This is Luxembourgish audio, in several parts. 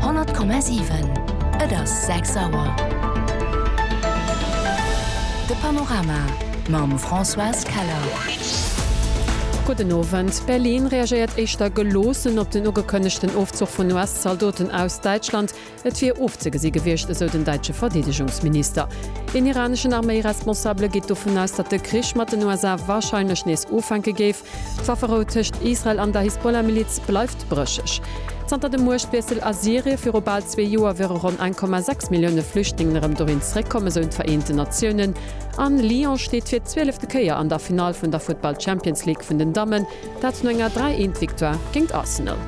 100,7 Et ass 6 Auer. De Panorama mam Françoise Keller. Gudden Owend. Berlin reagéiert éischter geloossen op den ugekënnegten Ofzuch vun US-Zaldoten aus Däitschland. Et wier ofzegesi gewiescht, esou den däitsche Verdeedegungsminister. Een iraneschen Arméi-Responsabele geet dovun aus, datt de Krich mat den USA warscheinlech nees ufänke géif. D'Wafferou tëscht Israel an der Hisbollah-Miliz bleift brécheg. Zanter dem Muechtwiessel a Syrien viru bal zwee Joer wiere ronn 1,6 Millioune Flüchtlingen erëm dohin zeréckkomm, esou d'Vereenten Natiounen. An Lyon steet fir d'zwielefte Kéier an der Finall vun der Futtball-Champions League vun den Dammen, dat no enger 3 Eent Victoire géint Arsenal.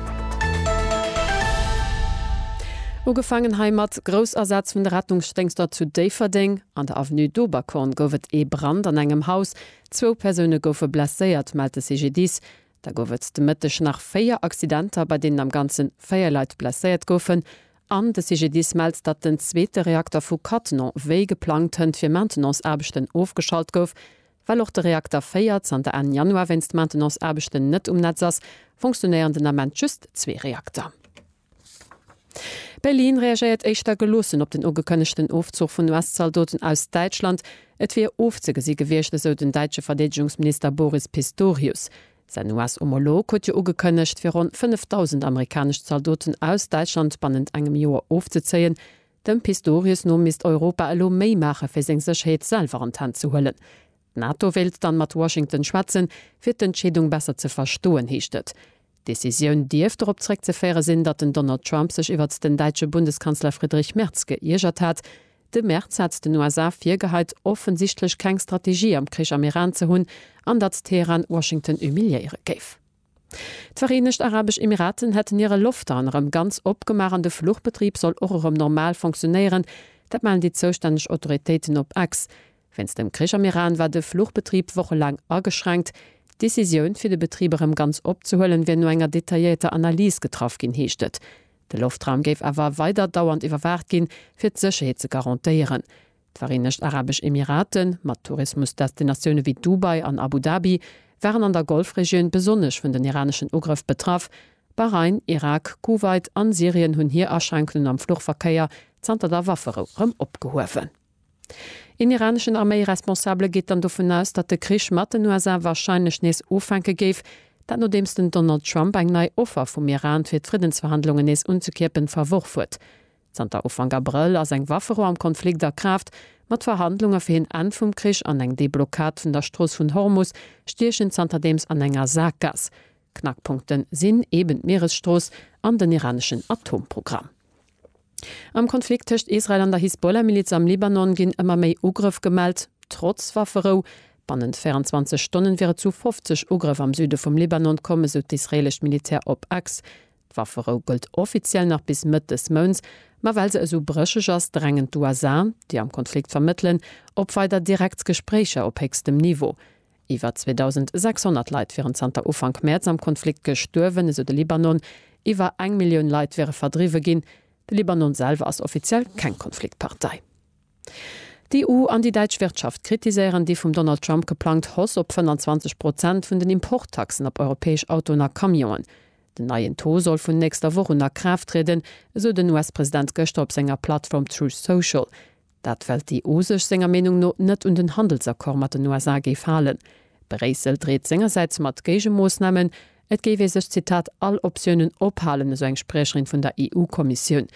Ugefaangen hei mat Groussasaz vun de Rettungsdéngschter zu Déifferdeng. An der Avenue d'Oberkorn gouf et ee Brand an engem Haus. Zwou Persoune goufe blesséiert, mellt de CGDIS. Da gouf et de Mëtteg nach véier Accidenter, bei deenen am Ganze véier Leit blesséiert goufen. An de CGDIS mellt, datt den zweete Reakter vu Cattenom wéi geplangt hënt fir Maintenanceaarbechten ofgeschalt gouf. Well och de Reakter 4 zanter Enn Januar wéinst Maintenanceaarbechten net um Netz ass, funktionéieren den Ament just zwee Reakter. Berlin reagéiert éischter geloossen op den ugekënnegten Ofzuch vun US-Zaldoten aus Däitschland. Et wier ofzegesi gewiescht, esou den däitsche Verdeedegungsminister Boris Pistorius. Säin US-Homolog huet jo ugekënnegt, fir ronn 5.000 amerikanesch Zaldoten aus Däitschland bannent engem Joer ofzezéien. Dem Pistorius no misst Europa elo méi maache fir seng Sécherheet selwer an d'Hänn ze huelen. D'NATO wéilt dann mat Washington schwätzen, fir d'Entscheedung besser ze verstoen, heescht et. D'Decisioun dierft dorop zréckzeféiere sinn, datt den Donald Trump sech iwwert den däitsche Bundeskanzler Friedrich Merz gëiergert hat. De Merz hat den USA virgeheit, offensichtlech keng Strategie am Krich am Iran ze hunn, an datt Teheran Washington humiliéiere géif. D'Vereenegt Arabesch Emiraten hätten hire Loftraun erëm ganz opgemaach an de Fluchbetrib soll och erëm normal funktionéieren. Dat mellen déi zoustänneg Autoritéiten op X. Wéinst dem Krich am Iran war de Fluchbetrib wochelaang ageschränkt. D'Decisioun, fir de Betrib erëm ganz opzehuelen, wier no enger detailléierter Analys getraff ginn, heescht et. De Loftraum géif awer weider dauernd iwwerwaacht ginn, fir d'Sécherheet ze garantéieren. D'Vereenegt Arabesch Emirate, mat Tourismusdestinatioune wéi Dubai an Abu Dhabi, waren an der Golfregioun besonnesch vun den iraneschen Ugrëff betraff. Bahrain, Irak, Kuwait an Syrien hunn hir Aschränkungen am Fluchverkéier zanter der Wafferou rëm opgehuewen. Een iraneschen Arméi-Responsabele geet dann dovun aus, datt de Krich mat den USA warscheinlech nees ufänke géif. Dat nodeems den Donald Trump eng nei Offer vum Iran, fir d'Friddensverhandlungen nees unzekierpen, verworf huet. Zanter Ufank Abrëll ass eng Waffero am Konflikt a Kraaft. Mat Verhandlunge fir en Enn vum Krich an eng Deblockad vun der Strooss vun Hormus stiech en zanterdeems an enger Saakgaass. Knackpunkte sinn eben d'Mieresstrooss an den iraneschen Atomprogramm. Am Konflikt tëscht Israel an der Hisbollah-Miliz am Libanon ginn ëmmer méi Ugrëff gemellt, trotz Wafferou. Bannent 24 Stonne wier et zu 50 Ugrëff am Süde vum Libanon komm, esou d'israeelescht Militär op X. D'Wafferou gëllt offiziell nach bis Mëtt des Mounts, ma well se esou brécheg ass, drängen d'USA, déi am Konflikt vermëttelen, op weider direkt Gespréicher op héchstem Niveau. Iwwer 2.600 Leit wieren zanter Ufank Mäerz am Konflikt gestuerwen, esou de Libanon. Iwwer eng Millioun Leit wiere verdriwwe ginn. De Libanon selwer ass offiziell keng Konfliktpartei. D'EU an déi däitsch Wirtschaft kritiséieren déi vum Donald Trump geplangt Hoss op 25 Prozent vun den Importtaxen op europäesch Autoen a Camionen. Den neien Taux soll vun nächster Woch un a Kraaft trieden, esou den US-President gëschter op senger Plattform Truth Social. Dat well d'EU sech senger Meenung no net un den Handelsaccord mat den USA géif halen. Bréissel dreet sengersäits mat Géigemoossnamen. Et géif ee sech, Zitat, all Optiounen ophalen, esou eng Spriecherin vun der EU-Kommissioun.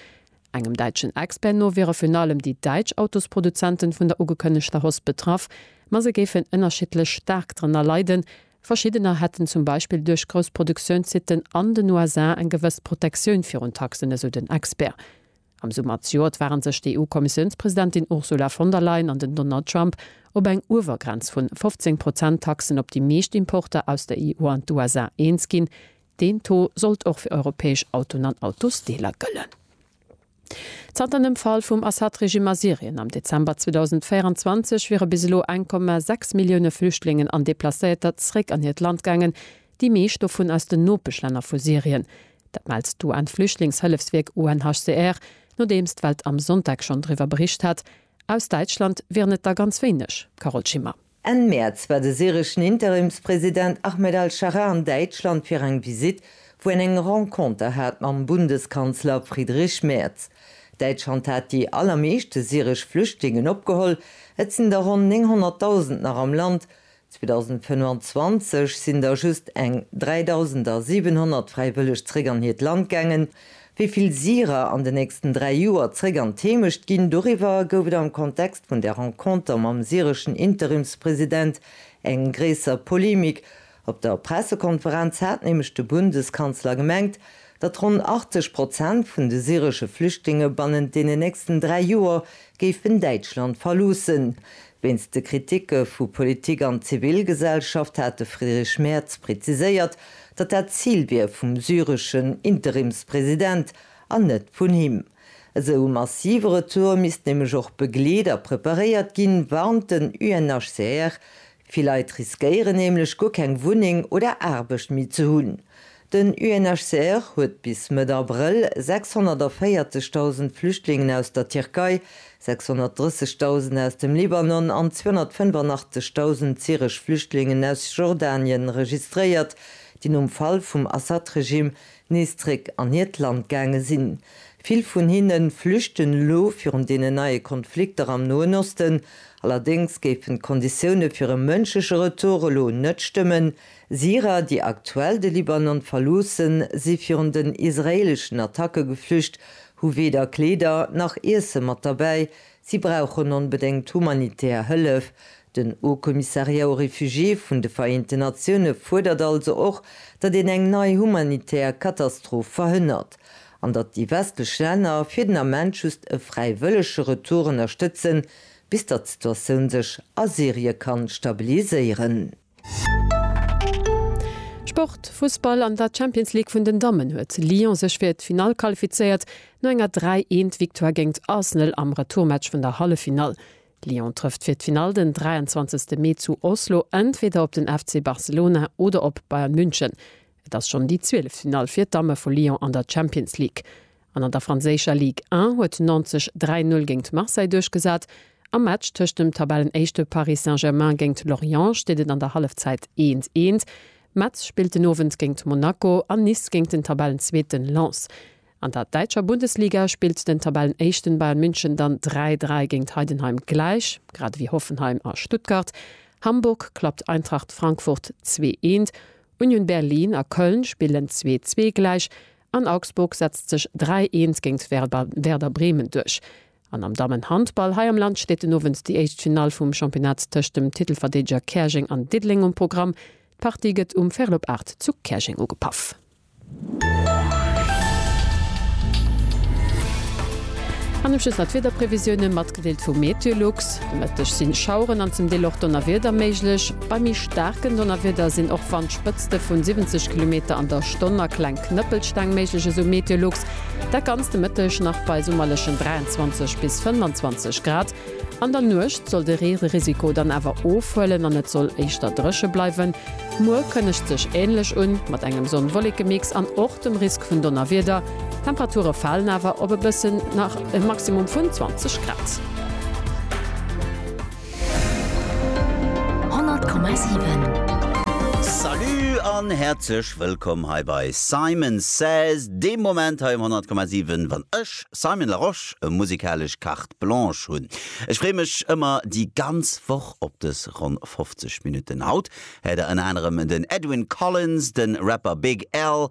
Engem däitschen Expert no wiere virun allem déi däitsch Autosproduzenten vun der ugekënnegter Hosp betraff, ma se géifen ënnerschiddlech staark drënner leiden. Verschiddener hätten zum Beispill duerch grouss Produktiounssitten an den USA eng gewëss Protektioun virun Taxen, esou den Expert. Am Summer zejoert ware sech d'EU-Kommissiounspresidentin Ursula von der Leyen an den Donald Trump op eng Uewergrenz vun 15 Prozent Taxen op déi meescht Importer aus der EU an d'USA eens ginn, Deen Taux sollt och fir europäesch Autoen an Autosdeeler gëllen. Zanter dem Fall vum Assad-Regime a Syrien am Dezember 2024 wiere bis elo 1,6 Millioune Flüchtlingen an Deplacéierter zeréck an hiert Land gaangen, déi meescht dovun aus den Nopeschlänner vu Syrien. Dat mellt d'UN-Flüchtlingshëllefswierk UNHCR, nodeems d'Welt am Sonntag schonn driwwer bericht hat. Aus Däitschland wieren et der ganz wéineg, Carole Schimmer. Enn Mäerz war de syreschen Interimspresident Ahmed al-Sharaa an Däitschland fir eng Visitt, wou en eng Renconter hat mam Bundeskanzler Friedrich Merz. Däitschland hat déi allermeeschte syresch Flüchtlingen opgeholl, et sinn der ronn 900.000 nach am Land. 2025 sinn der just eng 3.700 fräiwëlleg zeréck an hiert Land gaangen, Wéi vill Syrer an den nächsten dräi Joer zréck an d'Heemecht ginn, doriwwer gouf et am Kontext vun der Renconter mam syreschen Interimspresident eng gréisser Polemik. Op der Pressekonferenz hat nämlech de Bundeskanzler gemengt, datt ronn 80 Prozent vun de syresche Flüchtlinge bannent deenen nächsten dräi Joer géifen Däitschland verloossen. Wéinst de Kritike vu Politik an Zivilgesellschaft hat de Friedrich Merz preziséiert, datt dat d'Zil wier vum syreschen Interimspresident an net vun him. Esou e massive Retour misst nämlech och begleet a preparéiert ginn, warnt den UNHCR. Vill Leit riskéieren nämlech guer keng Wunneng oder Aarbecht méi ze hunn. Den UNHCR huet bis Mëtt Abrëll 640.000 Flüchtlingen aus der Tierkei, 630.000 aus dem Libanon an 285.000 syresch Flüchtlingen aus Jordanien registréiert, déi nom Fall vum Assad-Regime nees zréck an hiert Land gaange sinn. Vill vun hinne flüchten elo virun deenen neie Konflikter am Noen Osten. Allerdéngs géifen d'Konditioune fir e mënschleche Retour elo net stëmmen, Syrer, déi aktuell de Libanon verloossen, si virun den israeeleschen Attacke geflücht, hu weder Kleeder nach Iesse mat derbäi. Si brauchen onbedéngt humanitär Hëllef. Den Haut-Commissariat aux Réfugiés vun de Vereenten Natioune fuerdert also och, datt een eng nei humanitär Katastroph verhënnert, an datt déi westlech Länner fir den Ament just e fräiwëllege Retour ënnerstëtzen, bis datt d'Situatioun sech a Syrie kann stabiliséieren. Sport, Fussball, An der Champions League vun den Dammen huet Lyon sech fir d'Finall qualifizéiert no enger 3 Eent Victoire géingt Arsenal am Retourmatch vun der Halleffinall. Lyon trëfft fir d'Finall den 23 Mee zu Oslo entweder op den FC Barcelona oder op Bayern München. Et ass schonn déi 12. Finall fir d'Damme vu Lyon an der Champions League. An an der franséischer Ligue 1 huet Nantes sech 3 Null géingt Marseille duerchgesat. Am Match tëscht dem Tabellenéischte Paris Saint-Germain géingt Lorient steet et an der Hallefzäit 1, 1. Metz spillt den Owend géingt Monaco an Nice géingt den Tabellenzweeten Lens. An der däitscher Bundesliga spillt den Tabellenéischten Bayern München dann 3, 3 géingt Heidenheim gläich, grad ewéi Hoffenheim a Stuttgart. Hamburg klappt Eintracht Frankfurt 2, 1. Union Berlin a Köln spillen 2, 2 gläich. An Augsburg setzt sech 3 Eens géingt Werder Bremen duerch. An am Dammenhandball hei am Land steet den Owend déi éischt Finall vum Championnat tëscht dem Titelverdeedeger Käerjeng an Diddeleng um Programm. D'Partie gëtt um Ferl op 8 zu Käerjeng ugepaff. An um Schluss nach d'Wiederprevisioune mat. Gedeelt vu Meteolux, De Mëtteg sinn Schaueren an zum Deel och Donnerwieder méiglech. Bei méi staarken Donnerwieder sinn och Wandspëtzte vun 70 Kilometer an der Stonn a kleng Knëppelsteng méiglech, esou Meteolux. Dat ganzt de Mëtteg nach bei summerlechen 23 bis 25 Grad. An der Nuecht soll de Reerisiko dann awer ofhuelen an et soll éischter dréche bleiwen. Muer kënnegt sech änlech un, mat engem Sonn-Wollekemix an och dem Risk vun Donnerwieder. D'Temperature falen awer op e bëssen, nach e Maximum vun 20 Grad. Salut an häerzlech wëllkomm hei bei Simon Says, deem Moment hei um 100,7 wann ech, Simon Larosche, e musikalesch Carte Blanche hunn. Ech freeë mech ëmmer déi ganz Woch op dës ronn 50 Minutten. Haut häert der ënner anerem den Edwyn Collins, de Rapper Big L,